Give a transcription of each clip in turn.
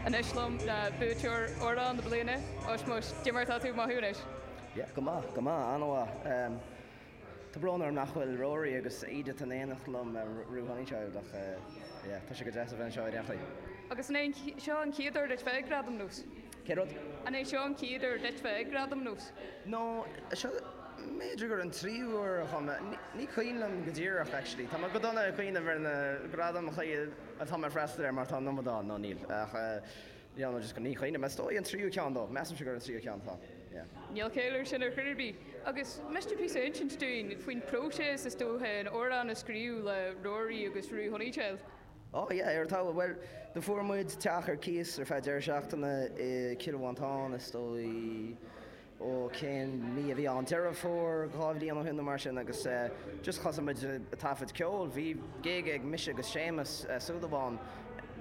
Anois liom le buaiteoir Amhrán na Bliana, Ushmush, cad é mar tá tú ag mothú anois. Yeah, go maith, go maith, an-mhaith. Tá brón orm nach bhfuil Rory agus Edith in éineacht liom, Roo Honeychild, ach yeah, tá sé go deas a bheith anseo i ndáiríre. Agus an é seo an chéad uair duit bheith ag Gradaim nós? Cé rud? An é seo an chéad uair duit bheith ag Gradaim nós? No, seo, b'fhéidir gur an tríú uair a chuaigh, ní cuimhin liom go díreach actually. Tá mé go dona ag cuimhneamh ar na gradaim atá mé ag freastal ar mar tá an iomad ann, no níl, ach yeah no just ní chuimhnim. Is dóigh an tríú ceann dó, measaimse gur an tríú ceann atá, yeah. Níl caill air sin ar chor ar bith. Agus an miste píosa a insint dúinn faoin próiséas is dócha an amhrán a scríobh le Rory agus Roo Honeychild? Oh yeah, ar an talamh. Bhuel, do fuair muid teach ar cíos ar feadh deireadh seachtaine i Cill Mhantáin, is dóigh, ó cén mí a bhí ann, Deireadh Fómhair dhá bhliain ó shin nó mar sin agus eh just thosaigh muid a' taifead ceol, bhí gig ag mise agus Séamus Súil Amháin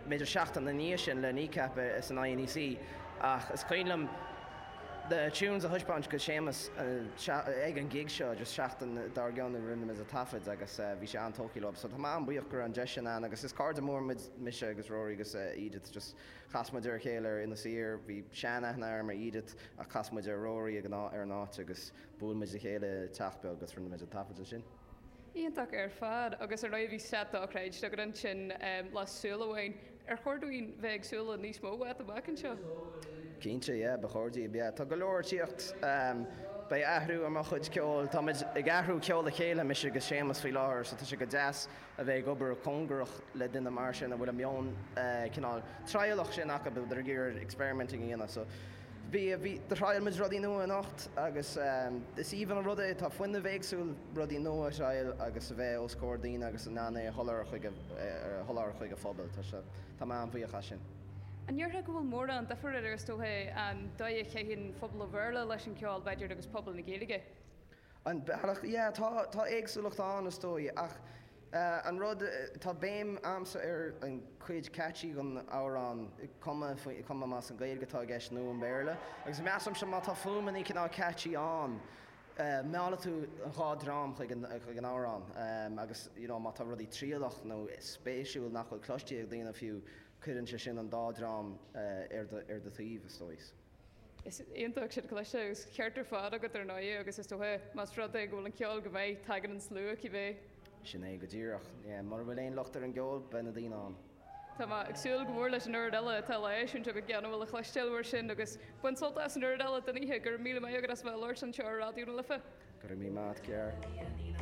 b'fhéidir seachtain ina ndiaidh sin le Kneecap i san INEC ach is cuimhin liom na tunes a thaispeáint go Séamus ag an gig seo agus seachtain dár gcionn rinne muid an taifead agus bhí sé an-tógtha leo so tá mé an-bhuíoch go raibh an deis sin ann agus is cairde mór muid mise agus Rory agus Edith just chas muid ar a chéile ar Inis Oírr bhí sean-aithne agam ar Edith ach chas muid ar Rory ag an áit agus bhuail muid le chéile i teach beag agus rinne muid an taifead ansin. Iontach ar fad agus ar ndóigh bhí set dochreidte agat ansin le Súil Amháin. Ar chóir dúinn bheith ag súil le níos mó uait amach anseo? Cinnte yeah, ba chóir daoibh yeah. Tá go leor ag tíocht. Beidh athrú ar mo chuid ceoil. Táimid ag athrú ceol le chéile, mise agus Séamus faoi láthair so tá sé go deas a bheith ag obair cóngarach le duine mar sin a bhfuil an meon cineál trialach sin acu, a bit ag iarraidh experimenting a dhéanamh so, Bhí, bhí, do thrial muid rudaí nua anocht agus is aoibhinn an rud é, tá fuinneamh éagsúil, rudaí nua a thrial agus a bheith os comhair daoine agus in ann é a sholáthar chuig a, a sholáthar chuig a phobail. Tá sé, tá mé an-bhuíoch as sin. An ndéarfá go bhfuil mórán duifir idir, is dócha, an dóigh a chaitheann phobal an Bhéarla leis an gceol, b'fhéidir, agus pobal na Gaeilge? An bealach? Yeah, tá, tá éagsúlacht ann, is dóigh, ach eh, an rud, tá béim a'msa ar an chuid catchy den amhrán, cuma faoi, cuma más an Gaeilge atá i gceist nó an Béarla, agus measaimse má tá fuaimeannaí cineál catchy ann, eh, meallfaidh tú an dhá dhream chuig an, chuig an amhrán, eh, agus, you know, má tá rudaí trialach nó spéisiúil nach bhfuil cloiste ag daoine fiú, cuireann sé sin an dá dhream, eh, ar do, ar do thaobh, is dóigh. Is iontach sin cliste agus ceart ar fad agat ar ndóigh agus is dócha más rud é go bhfuil an ceol go maith tagann an slua cibé. Sin é go díreach. Mura bhfuil aon locht ar an gceol beidh na daoine ann. Tá mé ag súil go mór leis an oiread eile atá le heisiúint agat gan mhoill a chloisteáil mar sin agus bain sult as an oiread eile den oíche. Go raibh míle maith agat as a bheith ag labhairt anseo ar Raidió na Life. Go raibh míle maith a't Ger.